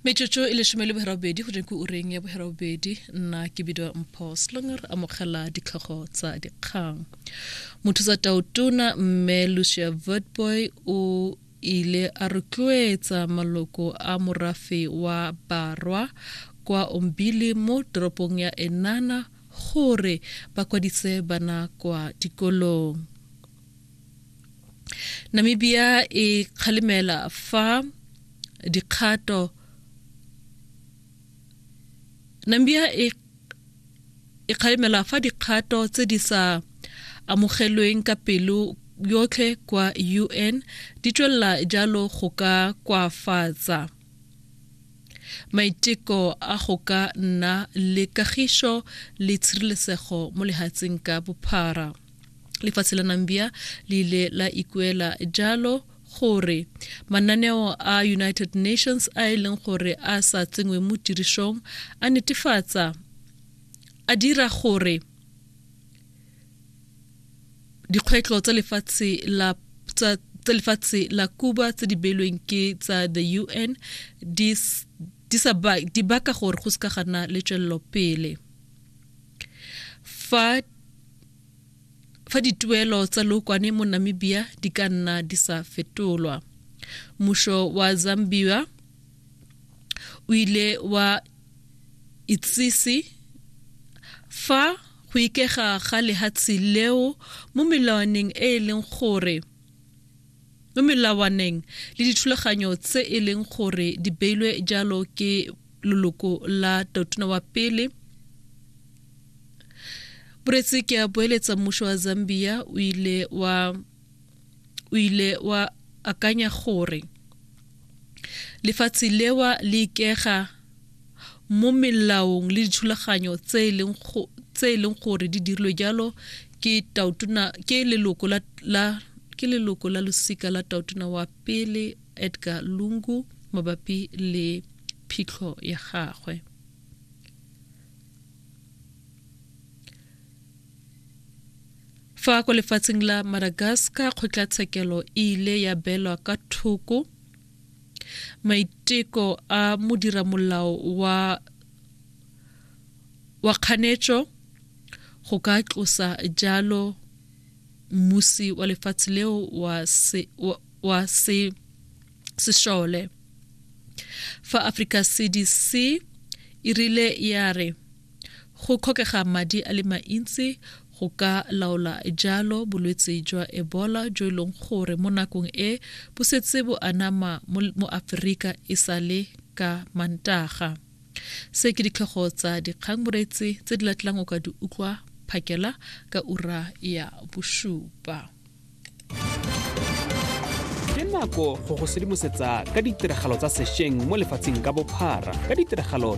metsotso e lesome le bogerabobedi go dinku o reng ya bogerabobedi nna ke bidiwa mpho slonger amogela ditlhogo tsa dikgang motho tsa taotona mme lucia vertboy o ile a rotloetsa maloko a morafe wa barwa kwa ombili mo toropong ya enana gore ba kwadise bana kwa dikolong namibia e kgalemela fa dikgato namibia e e kgalemela fa dikgato tse di sa amogelweng ka pelo yotlhe kwa un di tswelela jalo go ka kwafatsa maiteko a go ka nna le kagišo le tshireletsego mo lehatsheng ka bophara lefatshe la nambia le ile la ikuela jalo gore mananeo a united nations a e leng gore a sa tsenngwe mo tirisong a netefatsa a dira gore dikgwetlho tsa lefatshe la tsa lefatshe la Cuba tse di beilweng ke tsa the UN di di baka gore go se ka gana le tswelelo pele fa fa dituelo tsa lookwane mo namibia di ka nna di sa fetolwa mmušo wa zambia o ile wa itsise fa go ikega ga lehatshe leo mo melawaneng e e leng gore mo melawaneng le dithulaganyo tse e leng gore di beilwe jalo ke loloko la totona wa pele boretse ke a boeletsa mmušo wa zambia o ile wa o ile wa akanya gore lefatshe lewa le ikega mo melaong le dithulaganyo tse e leng gore di dirilwe jalo ke tautona ke leloko la, la ke leloko la losika la tautona wa pele Edgar Lungu mabapi le phitlho ya gagwe. Fa kwa lefatsheng la Madagascar kgotlatshekelo e ile ya belwa ka thoko maiteko a modiramolao wa wa kganetšo go ka tlosa jalo mmusi wa lefatshe leo wa, se, wa wa se sešole fa africa cdc e rile ya re go kgokega madi a le mantsi go ka laola jalo bolwetse jwa ebola jo e leng gore mo nakong e bo setse bo anama mo aforika e sa le ka mantaga se ke ditlhogo tsa dikgang moreetsi tse di latlang o ka di utlwa phakela ka ura ya bosupa ke nako go go sedimosetsa ka ditiragalo tsa sešweng mo lefatsheng ka bophara ka ditiragalo